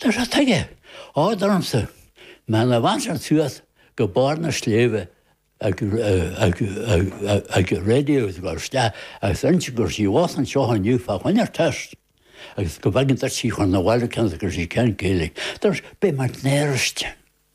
Tá fhios aige, ádh ormsa, mar dá mbeinn thuas go barr na sléibhte ag raidió is ag dul isteach agus iontaí gur síob a bhí anseo inniu fá choinne ar teist agus go bhfaighinn duit síob chun an bhaile cinnte gur síob cheann Gaoth Dobhair. Beidh mé i mBéal Feirste.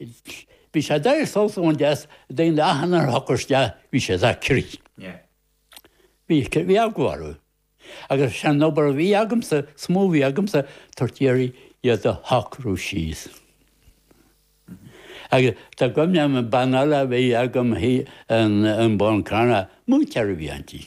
Bhí sé deacair sult a bhaint as achan uair a thugtaí isteach, bhí siad ar crith. Bhí eagla orthu. Agus is é an obair a bhí agamsa, smúil a bhí agamsa, tabhairt iarraidh iad a shocrú síos. Agus tá cuimhne agam bean eile a bhí agam, an Bán Carna, mú ceithre bhliain di.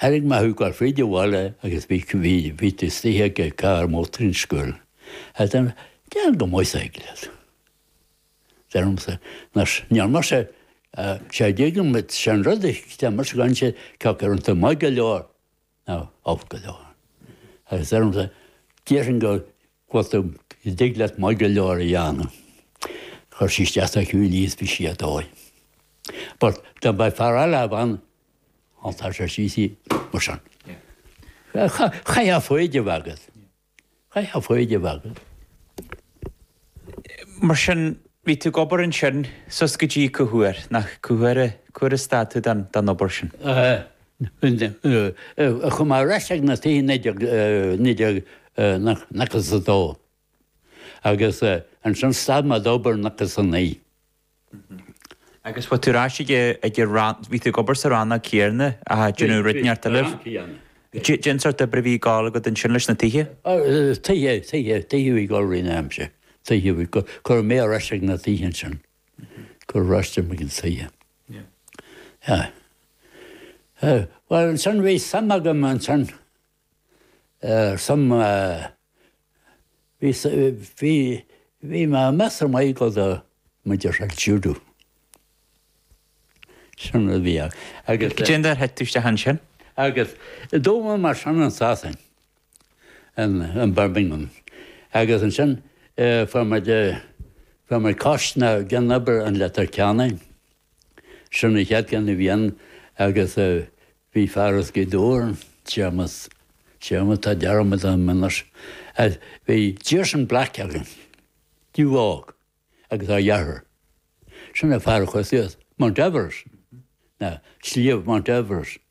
Thairg Mathew gur fríd a bhaile agus bhí bhídh istoíche ag a carr mótair an scoil. As deir deir go maith said leat. Deir liomsa nars níor mar sé sé ag éigean mit sé an rud a deir mar sin gan sé ceacht ar an ta maith go leor ná alt go leor. Agus deir liomsa déarfainn go bhfuil tú ag dig leat maith go leor a dheánamh. Chuir sí isteach sa chiúin í is bhí sí a dóigh. But do beidh fear eile a bhean Á tá sé sea sea mar sin. Caithfidh foighid a bheith agat. Caithfidh foighid a bheith agat. Mar sin, bhí tú ag obair ansin suas go dtí cá huair, nó cá huair a cá huair a stad tú den den obair sin? Chuaigh mé ar ais ag na tithe naoi déag naoi déag nócha a dó agus ansin stad mé d'obair nócha a naoi. Agus bhí tú ar ais ag an, bhí tú ag obair sa rannóg chéanna ag déanamh rud inteacht eile. Cén sórt oibre a bhí ag gabháil agat ansin leis na tithe? Tithe, tithe, tithe a bhí ag gabháil roimh an am sin. Tithe a bhí, cuireadh mé ar ais ag na tithe ansin. Cuireadh ar ais ag na tithe. Yeah. Bhuel ansin bhí suim agam ansin. suim i bhí bhí mé ag meas ar mhaith go dtí mé a déarfá Judo. Sin rud a bhí ann agus. Cé mhéad uair a d'éirigh tú isteach ansin? Agus d'fhoghlaim mé mar sin i Sasain in Birmingham agus ansin fuair muid fuair muid cóitseanna ag déanamh obair i Leitir Ceanainn. Sin an chéad ceann a bhí ann agus bhí fear as Gaoth Dobhair ann, Séamas, Séamas, tá dearmad orm anois, bhí Jason Black againn, dubh, óg, agus a dheartháir, sin an fear a chuaigh suas, Mount Everest, na, Sliabh Mount Everest.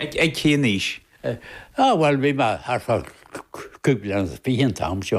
Ag cén aois? Á bhuel bhí mé thart fá 25 bliana an t-am seo.